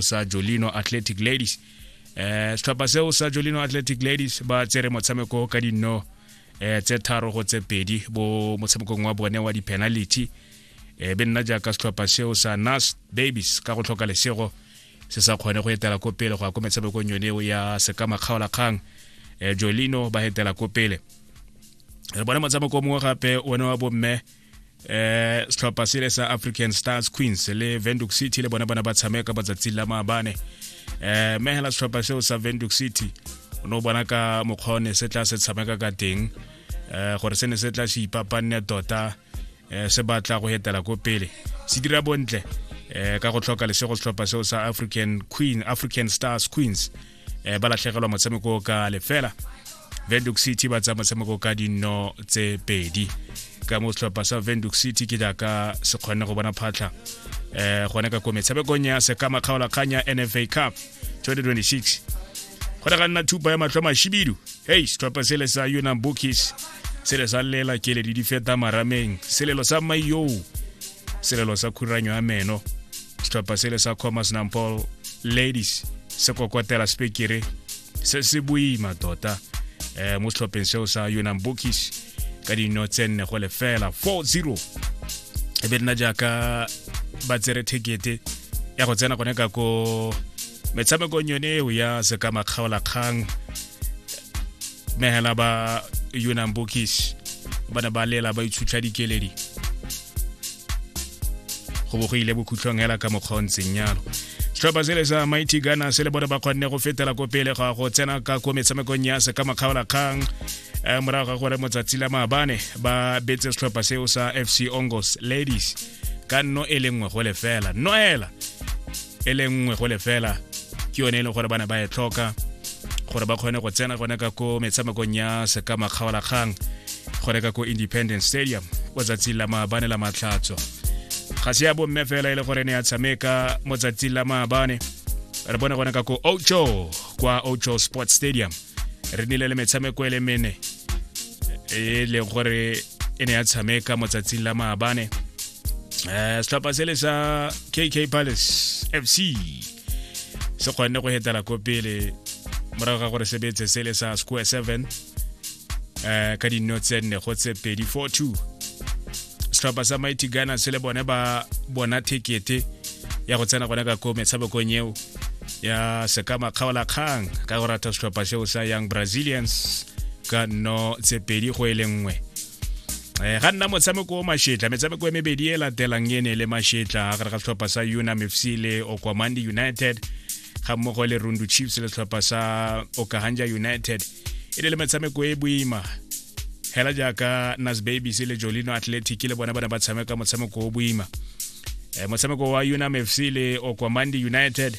sa jolino athletic ladies eh setlhopha seo sa jolino athletic ladies ba tsere motshameko ka dinno eh tse tharo go tse pedi bo motshamekong wa bone wa di-penality eh be nna jaaka setlhopha seo sa nas babies ka go tlhoka lesego se sa kgone go etela ko pele go ya ko metshamekong yone eo ya sekama kgaolakgang eh jolino ba etela ko pele re bone motshameko mongwe gape one wa bomme eh setlhopha sele sa african stars queens le venduc city le bona bona ba tshameka ba tsatsi la maabane eh mme hela setlhopha seo sa venduc city o ne o bona ka mokgwa o ne se tla se tshameka ka teng eh gore se ne se tla se ipapanne tota eh, se batla go hetela ko pele se dira bontle eh ka go tlhoka lesego setlhopha seo sa african queen african stars queens eh, ba latlhegelwa motshameko ka lefela venduk city ba tsaya motshameko ka dino tse pedi ka mo setlhopha sa venduk city ke jaaka se kgonne go bona phatlha eh gone ka ko metshamekong ya sekama kgaolakgang ya nfa cup 2026 go ne ga nna thupa ya matlho mashibidu hei setlhopha sele sa unam bookies sele sa lela kele di di feta marameng selelo sa maiyoo selelo sa khuranyo ya meno setlhopha sele sa commerce nampol ladies se kokotela spekere se se boima tota um mo setlhopheng seo sa yonang bookish ka dino tse nne go lefela 40 e be nna jaaka ba tsere thekete ya go tsena gone ka ko metshamekong yone eo ya sekama kgaolakgang mehela ba yonang bookish ba ne ba lela ba itshutlha dikeledi go bo go ile bokhutlhong hela ka mokgwa o ntseng yalo setlhopha sele sa mighty gana se le bone ba kgonne go fetela ko pele ga go tsena ka ko metshamekong ya se ka makgaolakgang um morago ga gore motsatsi la maabane ba betse setlhopha seo sa fc ongos ladies ka nno e le nngwe go lefela noela e le nngwe go lefela ke yone e leng gore bana ba e tlhoka gore ba kgone go tsena gone ka ko metshamekong ya sekama kgaolakgang gone ka ko independence stadium o tsatsing la maabane la matlhatso ga se ya bomme fela e le gore ne ya tshameka mo tsatsing la maabane re bone gone ka ko ocho kwa ocho sports stadium re nile le metshameko e le mene e leng gore e ne ya tshameka mo tsatsing la maabane eh setlhopha se le sa kk palace fc se kgonne go hetela ko pele morago ga gore sebetse se le sa square 7 eh ka dinno tse nne go tse pedi 42 setlhopha sa mighty ghana se le bone ba bona thekete ya go tsena gone ka ko metshamekong eo ya sekama kgaola kgang ka go rata setlhopha seo sa young brazilians ka nno tse pedi go e le nngwe eh ga nna motshameko o mashetla metshameko e mebedi e latelang e ne le mashetla gare ga setlhopha sa unam fc le okwamandi united ga mmogo le rundu chiefs le setlhopha sa okahanja united e ne le metshameko e boima hela jaaka nas babies le jolino athletic le bona ba ne ba tshameka motshameko o boima eh, motshameko wa unam fc le okwamandi united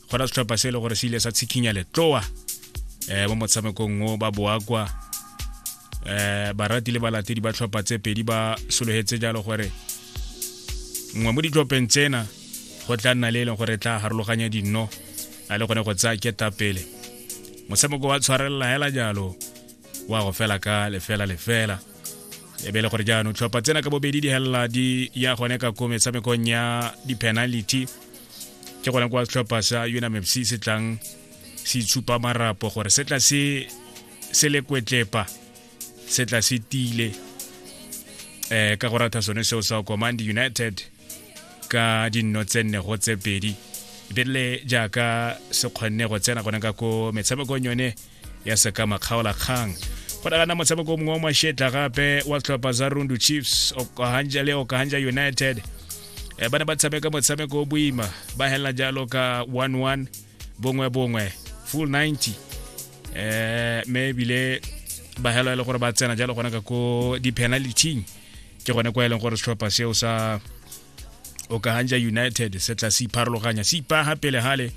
go ra setlhopha se e le gore se ile sa tshikhinya letloa um mo motshamekong o ba boakwa um barati le balatedi ba tlhopha tse pedi ba sologetse jalo gore nngwe mo ditlhopheng tsena go tla nna le e leng gore tla harologanya dinno a le gone go tsaya ketapele motshameko wa tshwarelela hela jalo wa go fela ka lefela lefela e be e le gore jaanong tlhopha tsena ka bobedi di helela di ya gone ka ko metshamekong ya di-penality ke gona kwa setlhopha sa unamfc se tlang se itshupa marapo gore se tla se se le kwetlepa se tla se tile eh ka go ratha sone seo sa command united ka dinno tse nne go tse pedi ebile jaaka se kgonne go tsena gone ka ko metshamekong yone ya sekama kgaolakgang go nagana motshameko mongwe wa mashetla gape wa tlhopha za rundu chiefs okahanja le okahanja united e ba ne ba tshameka motshameko o boima ba helela jalo ka 11 bongwe bongwe full 90 eh me ebile ba helo e le gore ba tsena jalo gona ka ko di-penality ke gone kwa e leng gore setlhopha seo sa okahanja united se tla se ipharologanya se ipaga pele gale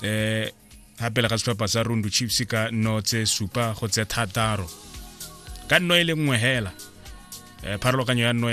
eh gapela ga setlhopha sa rundu chiefs ka nno tse supa go tse thataro ka nno e le nngwe hela eh, pharologanyo ya nno